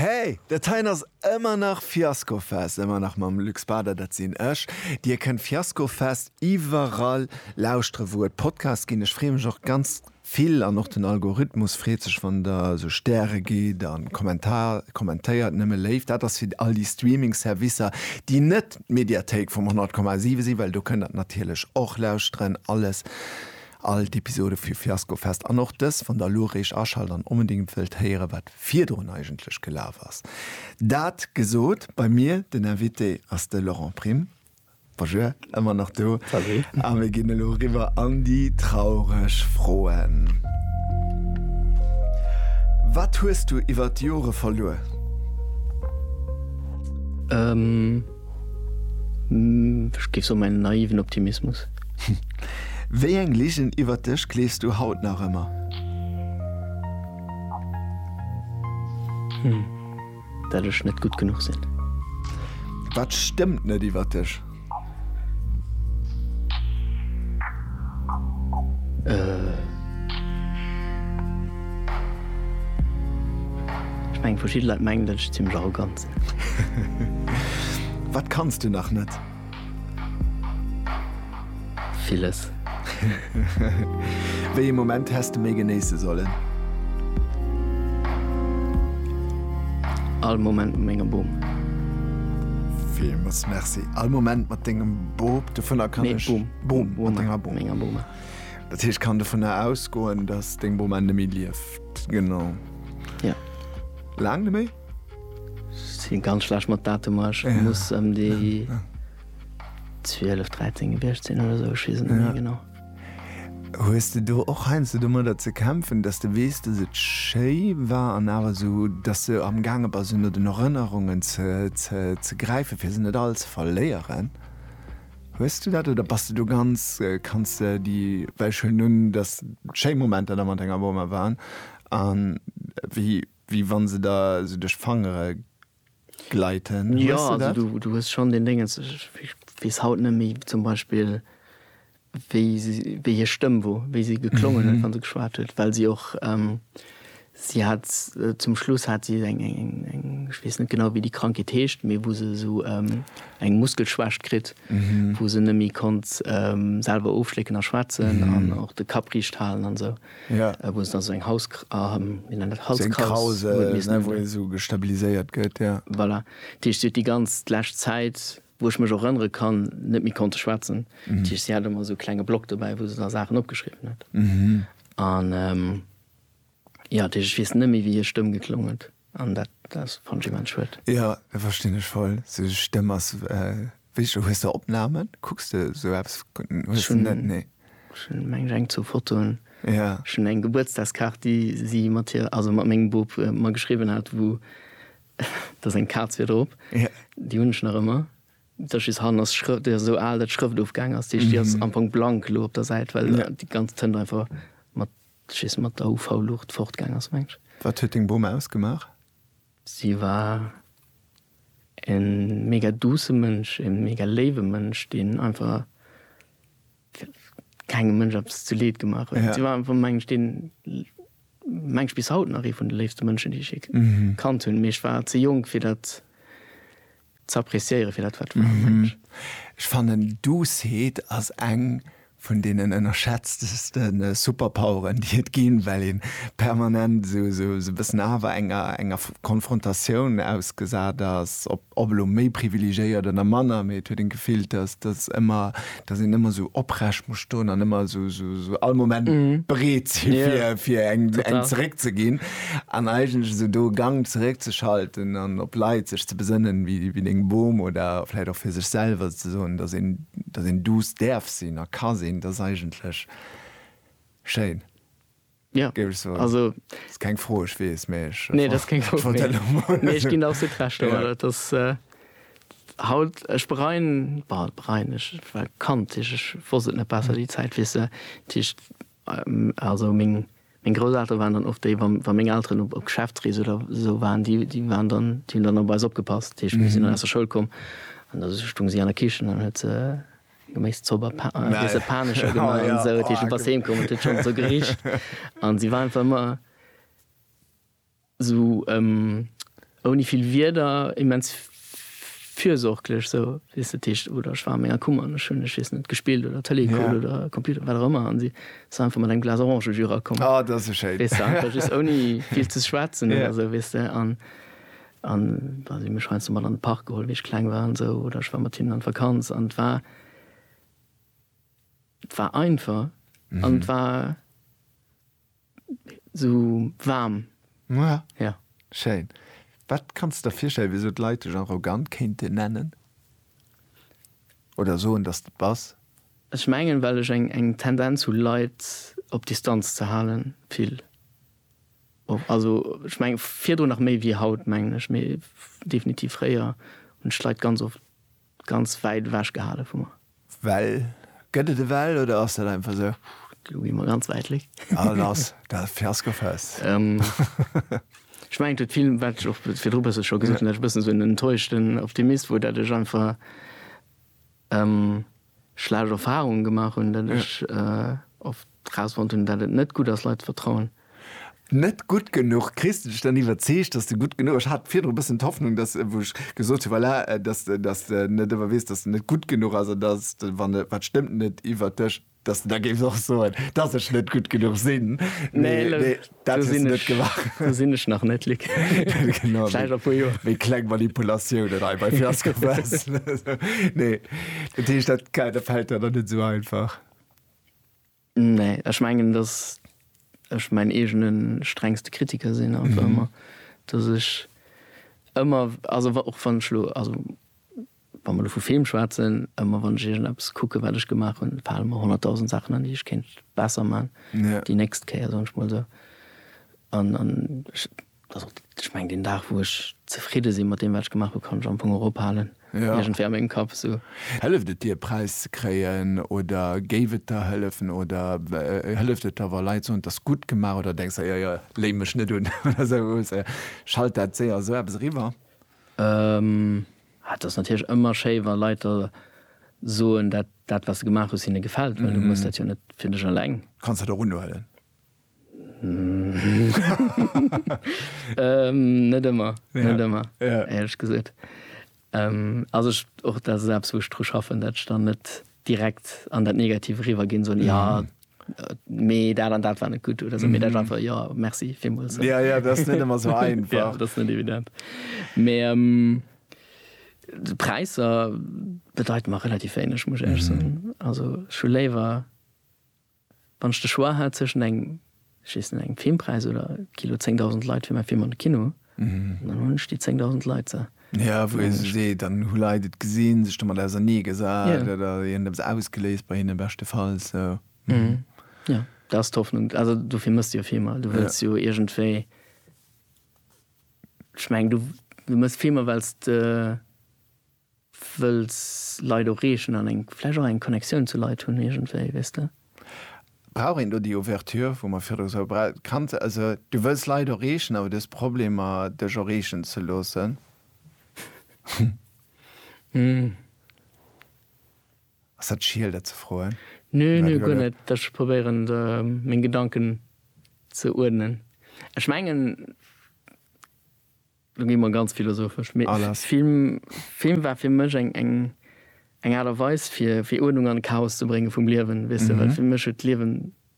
Hey, dat heien ass ëmmer nach Fiaskofest, ëmmer nach mam Luc Spader, dat sinn ech. Dir kënnt Fiaskofest iwwerall lauschtere wou et Podcasts ginn. Ech freeë mech och ganz vill an och den Algorithmus freet sech wann der esou Stäre gitt a kommentéiert. Nëmme léif, dat ass fir all déi Streaming Servicer déi net d'Mediathéik vum 100,7 sinn, well do kënnt der natierlech och lauschteren. Alles All d'Episode vu Fiasko Fest an och dës wann der elo eréischt aschalt an onbedéngt wëllt héieren wat virdrun eigentlech gelaf ass. Dat gesot, bei mir den Invité ass de Laurent Prim. Bonjour, ëmmer nach do. Salut. A mir ginn elo eriwwer an déi traureg Froen. Wat hues du iwwert d'Jore verluer? Ech géif soen, mäin naiven Optimismus. Wéi eng Ligen iwwert dech gleefs du haut nach ëmmer? Dat ech net gutt genuch sinn. Wat stëmmt net iwwert dech? Ech mengen, verschidde Leit mengen, dat ech zimmlech arrogant Wat kanns du nach net? Villes. Wéi ee Moment häss de méi genéisse sollen? All Moment mat mengem Bum. Villmols Merci. All Moment mat dengem Bop, dovunner kann ech. Nee, Bum. Bum, mat denger Bum. Mat menger Bum. Dat heescht, ech kann dovunner ausgoen, dass deng Bum ennemie lieft. Genau. Ja. Laang neméi? Sin ganz schlecht mat Datemer, ech muss em déi 12, 13 gewiecht sin oder esou, ech wees et net méi genau. Hues de do och heiansdo domadder ze kämpfen, dass de weess, dass et schéi war an awer esou, dass de am gaange bass un den Erënnerungen ze gräifen, fir se net all ze verléieren? Hues du dat oder bass de do ganz, kanns de déi, well ech huelen un, dass schéi Momenter da mat denger Boma waren an wéi, Wéi wann se der sou duerch d'Fangere gleiten. Jo, also du hues schonn deen Déngens, ech weess haut net méi zum Beispill, wéi si, wéi hir Stëmm wor, wéi si geklongen huet, wa se geschwat huet, well si och, si hat zum Schluss hat si eng, ech weess net genau, wéi déi Krankheet heescht, mee wou se esou eng Muskelschwächt kritt, wou se net méi konnt selwer ofschlécken a schwätzen an och de Kapp riicht halen an esou. Ja. Wou se da sou eng Haus, wéi nennt dat, Halskraus. Sou eng Kraus, ne, wou ee sou gestabiliséiert gëtt, ja. Voilà. Dat heescht, si huet déi ganz d'lescht Zäit, wou ech mech och erënnere kann, net méi konnte schwätzen. Dat heescht, si hat ëmmer sou e klenge Block dobäi, wou se da Saachen opgeschriwwen huet. An, jo, dat heescht, ech weess net méi, wéi hir Stëmm geklong huet. An dat ass fand ech immens schued. Jo, dat verstinn ech voll. Sou Stëmm ass wéi, hues de Opnamen? Kucks de sou eppes? Hues de net? Nee. Ech hunn mengen ech eng zwou Fotoen. Jo. Ech hunn eng Gebuertsdagskaart déi si mat hir, also mat mengem Bub mer geschriwwen hat wou da seng Kaz wier drop. Jo. Déi hunn ech nach ëmmer. Dat ass just hannen ass d'Schrë, déi ass esou al dat d'Schrëft ofgaangen ass. Déi ass am Fong blank elo op der Säit well déi ganz Tënt einfach mat Sech ees mat der UV-Luucht fortgaang ass, mengs. Wat huet deng Bom ausgemaach? Si war e mega duusse Mënsch, e mega léiwe Mënsch, deen einfach kengem Mënsch eppes zu Leed gemaach huet. Si war einfach, mengen ech, deen, mengen ech, bis haut nach ee vun de léifste Mënschen, déi ech jee kannt hunn. Mee ech war ze jonk, fir dat Ze appreciéieren fir dat wat war, mensch. Mmh. Ech fannen Doucet ass eng vun deenen ënnerschätzteste Superpoweren déi et ginn, well een permanent sou e bëssen awer enger enger Konfrontatioun ausgesat ass, ob elo méi privilegéiert oder manner, mee et huet een d'Gefill dass dass ëmmer dass een ëmmer sou oprecht muss stoen an ëmmer sou, sou, sou all Moment bereet si fir, Ja. fir eng, eng Total. zeréck ze ginn an eigentlech esou do e Gang zeréck ze schalten an op Leit sech ze besënnen, wéi, wéi deng Bom oder vläit och fir sech selwer ze soen, dass een, dass een duuss däerf sinn a ka sinn, dat ass eigentlech schéin. Ja, géif ech soen. Also. Ass keng Fro, ech weess, mee ech. Nee, dat ass keng Fro. Wollt dat elo mol. Nee, ech ginn der absolut Recht. Awer dat ass haut, ech bereien, bah, bereien, ech war Kand, ech, ech wosst et net besser, déi Zäit, weess de, dat heescht, also meng, meng Grousseltere waren dann oft déi, wa, wa meng Elteren op, op Geschäftsrees oder esou waren, déi, déi waren dann, déi hunn dann op eis opgepasst. Dat heescht, mir sinn dann aus der Schoul komm an da stung si an der Kichen an huet se. Geméiss zou bei Pa, Nein. Dese Panescher gemaach Ah, ja. an sou. Dat heescht, du bass heem komm, et huet schonn sou gericht. An si war einfach ëmmer sou em, ouni vill Wierder, immens fürsorglech sou, weess de. Dat heescht, oder ech war an menger Kummer an ech hunn, ech weess net, gespillt oder Tëlee gekuckt Ja. oder Computer, wat och ëmmer, an si ass einfach mat engem Glas Orangejus erakomm. Ah, dat ass e schéin. Weess de, einfach just ouni vill ze schwätzen Ja. oder sou, weess de. An An da si mech heiansdo mat an de Park geholl, wéi ech kleng war an esou, oder ech war mat hinnen an d'Vakanz an et war, et war einfach an et war esou waarm. Ja. Ja. Schéin. Wat kanns de der virstellen, wéi esou d'Leit dech arrogant kéinten nennen oder soen, dass de et bass? Ech mengen, well ech eng Tendenz hu Leit op Distanz ze halen, vill. Och, also ech mengen virdrun nach méi wéi haut, mengen ech, mee definitiv fréier hunn ech d'Leit ganz oft ganz wäit ewech gehale vu mer. Well? Gëtt et e Well oder ass dat einfach esou? Lo gi mer ganz wäit weg. Ah lass dat Fiaskofest. Ech mengen et huet vill, wat ech och virdru e bësse scho gesot hunn, dat ech e bëssen esou en enttäuschten Optimist wor, dat ech einfach, schlecht Erfahrungen gemaach hunn, datt ech oft erausfonnt hunn, datt et net gutt ass, Leit ze vertrauen. Net gutt genuch. Kriss de dech dann iwwerzeegt, datt de gutt genuch ass? Ech hat virdru e bëssen d'Hoffnung, datt, wou ech gesot hunn, voilà, datt, datt de net ëmmer weess, datt de net gutt genuch ass an datt de, wann e, wat stëmmt net iwwert dech, datt de da géifs och soen, datt ech net gutt genuch sinn. Nee, Dat hues du net gemaach. Do sinn ech nach net, Luc. Genau. Vläicht a puer Joer. Wéi kleng Manipulatiounen hei bei Fiasco Press. Nee. Dat heescht, dat dat fält der dann net esou einfach? Nee. Ech mengen, datt ech mäin eegene strengste Kritiker sinn einfach ëmmer. Datt ech ëmmer, also wa och wann ech elo, also Wa mer elo vu Film schwätzen, ëmmer wann ech iergendeppes kucken, wat ech gemaach hunn, fale mer honnertdausend Saachen an, déi ech kéint besser maachen déi nächst Kéier, soen ech mol esou. An ech, also ech mengen, deen Dag, wou ech zefridde sinn mat deem, wat ech gemaach hunn, kann ech am Fong och ophalen, iergendwéi a mengem Kapp esou. Hëlleft et dir, e Präis ze kréien? Oder géif et der hëllefen? Oder hëlleft et der, wa Leit soen, 't ass gutt gemaach? Oder denks der, Jo, jo, léi mech net un oder esou? Schallt dat séier esou eppes eriwwer? Et ass natierlech ëmmer schéi wa Leit da soen, dat dat wat se gemaach hues hinne gefält, well du muss dat jo net fir dech eleng. Kanns dat och unhuelen? Net ëmmer, net ëmmer éierlech gesot. Also ech och dat ass eppes wou ech dru schaffen, dat ech dann net direkt an dat Negativ eriwwer ginn, soen, jo mee dat an dat war net gutt oder sou, mee dat war einfach, jo, merci villmools. Ja, ja, dat ass net ëmmer sou einfach. Ja, dat ass net evident. Mee d'Präisser bedeiten mer relativ wéineg, muss ech éierlech soen. Also ech hu léiwer, wann ech de Choix hätt zwëschen engem, ech weess net, engem Filmpreis oder Kino 10.000 Leit fir mäi Film an de Kino, Dann hun ech déi 10.000 Leit se. Jo, wou ee sech seet, dann hu Leit et gesinn, sech domat ausernee gesat oder et huet eppes ausgeléist bei hinnen, beschtefalls. Jo, dat ass d'Hoffnung. Also dofir méchs de jo Filmer. Du wëlls jo iergendwéi, ech mengen, du méchs Filmer well s de. Wëlls Leit ureegen an eng, vläicht och eng Connectioun zu Leit hunn iergendwéi, weess de. Brauch een do déi Ouverture, wou mer virdru sou bra. Kanns, also du wëlls Leit ureegen, awer du hues Problemer dech ureegen ze loossen. Ass dat schiel dat ze froen? Nö, nö, guer net. Ech probéieren meng Gedanken ze uerdnen. Ech mengen. Lo gi mer ganz philosophesch, mee Film war fir mech eng Aart a Weis fir Uerdnung an Chaos ze bréngen vum Liewen, weess de, well fir mech huet d'Liewen.